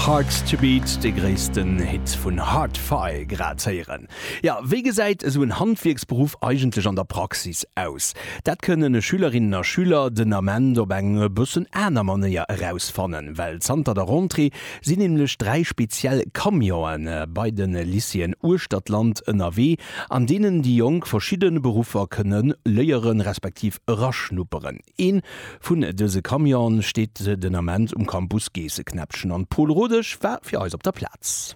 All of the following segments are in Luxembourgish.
Hearts to Beat, dee gréissten Hit vun Hard-Fi grad héieren. Jo, wéi gesäit esou en Handwierksberuff eigentlech an der Praxis aus? Dat kënnen Schülerinnen a Schüler den Ament op eng e bëssen aner Manéier erausfannen, well zanter der Rentrée sinn nämlech dräi speziell Camionen bei de Lycéeën uechter d'Land ënnerwee, an deenen déi Jonk verschidde Beruffer kënne léieren, respektiv eraschnupperen. Een vun dëse Camionen steet den Ament um Campus Geesseknäppchen an Paul Rodesch war fir eis op der Plaz.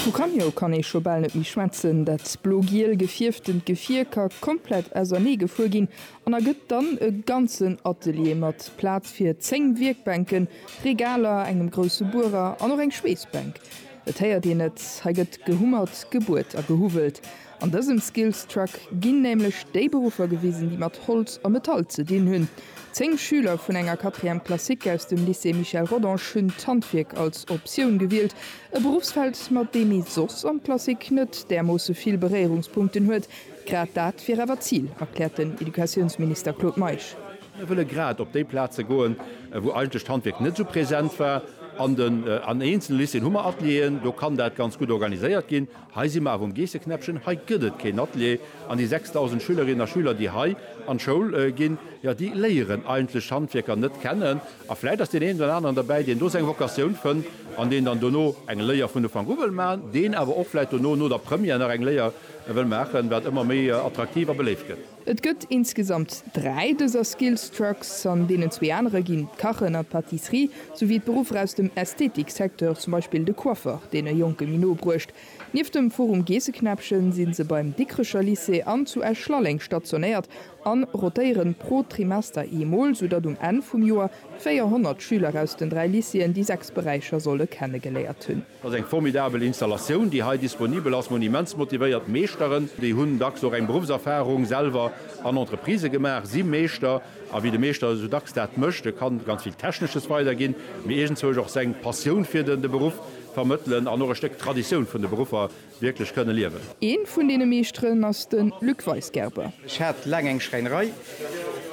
Vu Camio kann ee scho bal net méi schwätzen, dat blo-giel gefierftent Gefier ka komplett ausernee gefuer ginn an ergëtt dann e ganzen Atelier mat Plaz fir 10 Wierkbänken, Regaler, engem grousse Buerer an och eng Schweessbänk. Et héiert een et, hei gëtt gehummert, gebuert a gehuwwelt. An dësem Skills Truck ginn nämlech déi Beruffer gewisen, déi mat Holz a Metall ze dinn hunn. Zéng Schüler vun enger Quatrième classique aus dem Lycée Michel Rodange hunn d'Handwierk als Optioun gewielt, e Berufsfeld, mat deem ee soss an d'Klassik net därmoosse vill Beréierungspunkten huet. Grad dat wier awer d'Zil, erkläert den Educatiounsminister Claude Meisch. Mir wëlle grad op déi Plaze goen, wou eigentlech d'Handwierk net esou present war. An eenzele Lycéeën hu mer Atelieren, do kann dat ganz gutt organiséiert ginn. Hei si mer awer um Geesseknäppchen, hei gëtt et keen Atelier an déi 6.000 Schülerinnen a Schüler, déi hei an d'Schoul ginn, jo, déi léieren eigentlech d'Handwierker net kennen. A vläicht ass deen een oder aneren dobäi, deen do seng Vocatioun fënnt an deen dann dono eng Léier vun Ufank u wëll maachen, deen awer och vläicht dono, no der Première, nach eng Léier wëll maachen, wat ëmmer méi attraktiv a beléift gëtt. Et gëtt insgesamt dräi dëser Skills Trucks, an deenen zwee anere ginn d'Kachen an d'Pâtisserie, souwéi d'Beruffer aus dem Ästhetik-Secteur, zum Beispill de Coiffeur, deen e Jonke méi no bruecht. Nieft dem Forum Geesseknäppchen sinn se beim Dikkrecher Lycée an zu Esch-Lalleng stationéiert a rotéieren pro Trimester eemol, soudatt um Enn vum Joer 400 Schüler aus den dräi Lycéeën déi sechs Beräicher solle kennegeléiert hunn. Dat ass eng formidabel Installatioun, déi hei disponibel ass. Monimentsmotivéiert Meeschteren, déi hunn dacks och eng Beruffserfarung selwer an Entreprisë gemaach, si Meeschter. A wéi de Meeschter esou dacks dat mécht, e kann ganz vill Technesches weiderginn, mee iergendzwousch och seng Passioun fir de Beruff vermëttelen an och e Stéck Traditioun vun de Beruffer Wierklech kënne liewen. Een vun deene Meeschteren ass den Luc Weisgerber. Ech hat laang eng Schräinerei,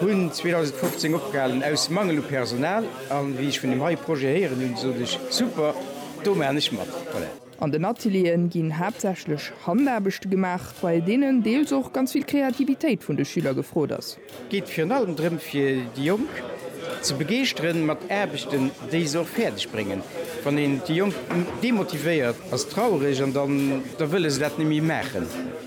hunn 2015 opgehalen aus Mangel u Personal an wéi ech vun dem hei Projet héieren hunn, sot ech, super, do maachen ech mat. An den Atelieren ginn haaptsächlech Handaarbechte gemaach, bei deenen deels och ganz vill Kreativitéit vun de Schüler gefrot ass. Et geet virun allem drëm fir déi Jonk ze begeeschtere mat Aarbechten, déi se och fäerdeg bréngen. Wann een déi Jonk demotivéiert, ass traureg an dann da wëlle se dat net méi maachen.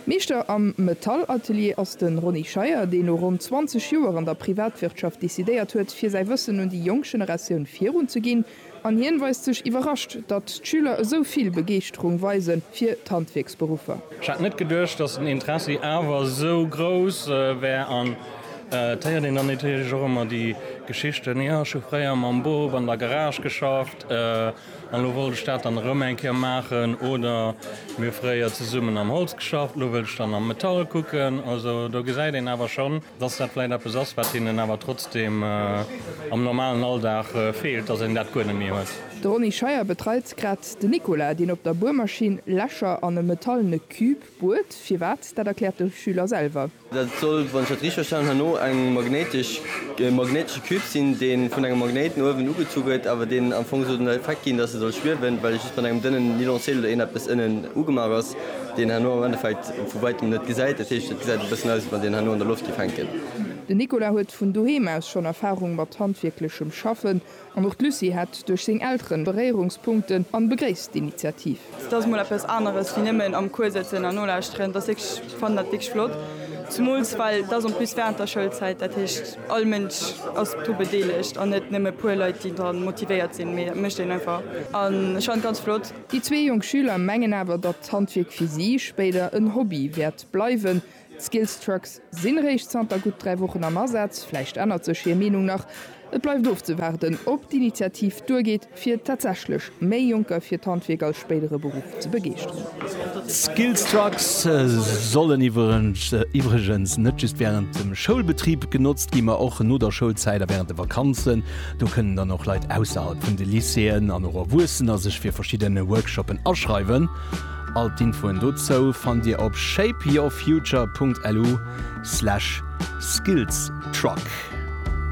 Meeschter am Metallatelier ass de Ronny Scheier, deen no ronn 20 Joer an der Privatwirtschaft decidéiert huet, fir säi Wëssen un déi jonk Generatioun virunzeginn. An hien weist sech iwwerrascht, datt d'Schüler esou vill Begeeschterung weise fir d'Handwierksberuffer. Ech hätt net geduecht, datt den Interessi awer esou grouss wär. An et héiert een dann natierlech och ëmmer déi Geschichten, Jo, ech hu fréier mam Bop an der Garage geschafft an elo wollt ech dat dann erëm eng Kéier maachen. Oder, Mir hu fréier zesummen am Holz geschafft, elo wëll ech dann am Metall kucken. Also do gesäit een awer schonn, dass dat vläicht eppes ass, wat hinnen awer trotzdeem am normalen Alldag feelt, dass een dat guer net méi huet. De Ronny Scheier betreit grad de Nicolas, deen op der Buermaschinn Lächer an e metallene Cube buert. Firwat, dat erkläert de Schüler selwer. Dat soll, wann ech dat richteg verstanen hunn, no e magnéitesche Cube sinn, dee vun engem Magnéit no uewen ugezu gëtt, awer deen am Fong soll den Effekt ginn, dass e soll schwiewen, well just mat engem dënnen Nylonseel oder eeneppes ënnen ugemaach ass. deen herno am Endeffekt vu wäitem net gesäit, dat heescht et gesäit e bëssen aus wéi wann deen herno an der Loft géif hänken. Den Nicolas huet vun doheem aus schonn Erfarung mat handwierklechem Schaffen an och d'Lucie hätt duerch seng Elteren Beréierungspunkten an begréisst d'Initiativ. Et ass mol eppes aneres wéi nëmmen am Cours sëtzen an nolauschteren, et ass wierklech, ech fannen dat wierklech flott, zumools well et ass en plus während der Schoulzäit, dat heescht all Mënsch ass do bedeelegt an net nëmme e puer Leit déi dran motivéiert sinn, mee et mécht een einfach an ech fannen et ganz flott. Déi zwee jonk Schüler mengen awer, datt d'Handwierk fir si spéider en Hobby wäert bleiwen. D'Skillstrucks sinn eréischt zanter gutt dräi Wochen am Asaz, vläicht ännert sech hir Meenung nach. Et bleift ofzewaarden, ob d'Initiativ duergeet, fir tatsächlech méi Jonker fir d'Handwierk als spéidere Beruff ze begeeschteren. D'Skillstrucks sollen iwwregens net just wärend dem Schoulbetrib genotzt ginn, ma och no der Schoulzäit a wärend de Vakanzen. Do kënnen dann och Leit ausserhalb vun de Lycéeën an och Erwuessener sech fir verschidden Workshoppen aschreiwen. All d'Infoen dozou fannt Dir op shapeyourfuture.lu/skillstruck.